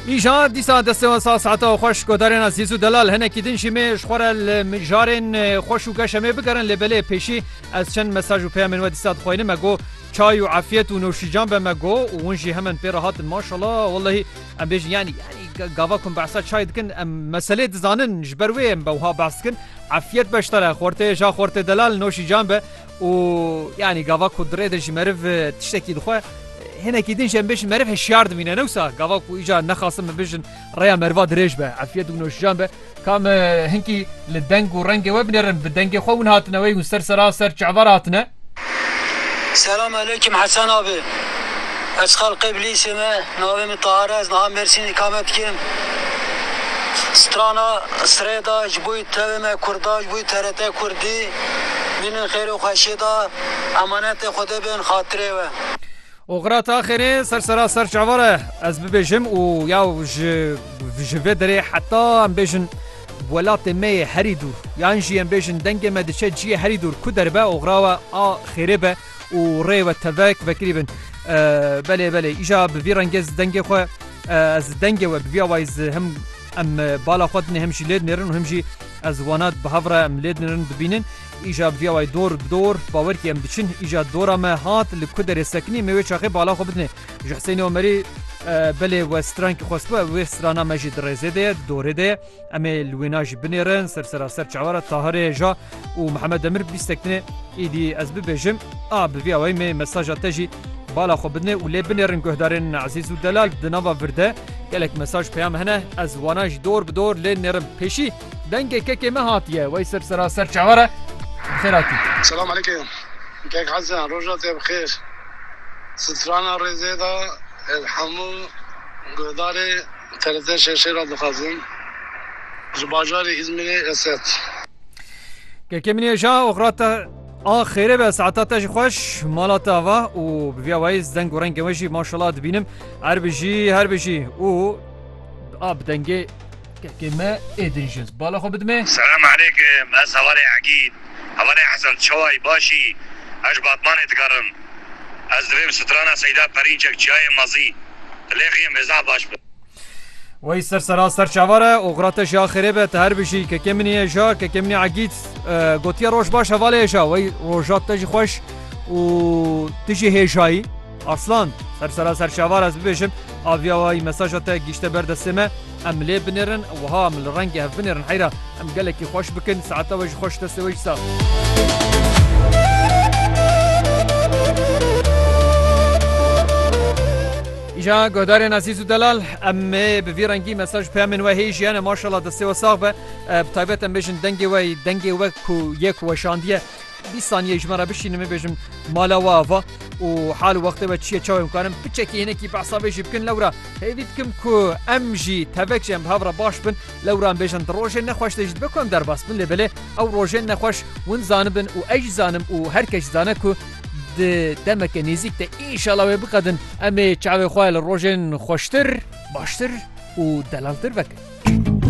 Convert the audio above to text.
Îja dîsa destêwan sa saeta xweş godarên azîz û delal hinekî din jî mêj xwe re li mijarên xweş û geşe mê bigerin lê belê pêşî ez çend mesaj û peyamên we dîsa dixweynim me got çay û efiyet û nûşîcan be me got û hûn jî hemen pê re hatin maşala wellehî em bêjin yanî yanî gava ku behsa çay dikin em meselê dizanin ji ber wê em be wiha behs dikin efiyet beştare xortê ja xortê delal nûşîcan be Û yanî gava ku di rê de jî meriv tiştekî dixwe hinekî din jî em bêjin meriv hişyar dimîne ne wisa gava ku îcar nexasin min bijin rêya meriva dirêj be efiyet û noşijan be ka me hinkî li deng û rengê we binêrin bi dengê xwe hûn hatine wey hûn ser sera ser çavar hatine. Selam aleyküm Hesen abi Ez xelqê Bilîsê me navê min Tahar e ez niha Mêrsîn îkamet dikim strana Sirêda ji bo tevê me kurda ji bo TRT kurdî. Bînin xêr û xweşiyê da emanetê Xwedê bên xatirê we. Oxira Taxirê ser seraser çavar e ez bibêjim û ya ji ji vê derê heta em bêjin welatê me yê herî dûr yan jî em bêjin dengê me diçe ciyê herî dûr ku derbe oxira we a xêrê be û rê we tevek vekirî bin. Belê belê îja bi vî rengê ez dengê xwe ez dengê we bi vî awayî ez him Em bala xwe din him jî lê dinêrin û him jî ez wana bi hev re em lê dinêrin dibînin. Îja bi vîya wayî dor bi dor bawer kî em diçin. Îja dora me hat li ku derê sekinî me wê çaxê bala xwe bidinê ji Huseyinê Omerî belê we stran kî xwestibû ev wê strana me jî di rêzê de ye di dorê de ye. Em ê li wêna jî binêrin ser seraser çavara Tahirê ja. û Mihemed Demir bîstek din e. Êdî ez bibêjim a bi vî awayî me mesaja te jî bala xwe bidin û lê binêrin guhdarên Ezîz û Delal di nava vir de gelek mesaj peyam hene ez wana jî dor bi dor lê nêrim pêşî dengê kekê me hatiye wey ser sera ser çawa re bi xêr hatî. Selam Aleyküm Kek Hesen roja te bi xêr. Strana rêzê de hemû guhdarê TRT şeşê re dixwazim ji bajarê Îzmîrê Esed. Kekê min hêja oxira te a xêrê be saeta te jî xweş mala te ava û bi vîya wayîz deng û rengê we jî maşallah dibînim erbijî herbijî û a bi dengê kekê me ê din jin bala xwe bidimê. Selam Aleykim ez hevalê Egîd. Hevalê Hesen Çaway, Başî, ez ji Batmanê dikarim. Ez divêm strana Seyda Perînçek Çiyayê Mazî dilêxiyim hêza baş be. Wey ser sera ser çavar e, oxira te jî a xêrê be, tu her bijî. Kekê min î hêja, kekê min î Egîd gotiye roj baş hevalê hêja. Wey roja te jî xweş û tu jî hêjayî. Arslan, Ser seraser şevar ez bibêjim aviya wa yî mesaja te gihîşte ber destê me, em lê binêrin wiha em li rengê hev binêrin heyra em gelekî xweş bikin saeta we jî xweş destê we jî sax. Îja guhdarên ezîz û delal em ê bi vî rengî mesaj peyamên we hê jiyane maşallah destê we sax be bi taybet em bêjin dengê we yî dengê we ku yê ku weşandiye Bîst saniyeyê ji me re bişînin min bêjin mala we ava û hal û wextê we çi ye çawa em karin piçekî hinekî behsa vê jî bikin lewra hêvî dikim ku em jî tevek jî em bi hev re baş bin lewra em bêjin di rojên nexweş de jî dibe ku em derbas bin lê belê ew rojên nexweş win zanibin û ez jî zanim û her kes jî zane ku di demeke nêzîk de înşala wê biqedin em ê çavê xwe li rojên xweştir, baştir û delaltir vekin.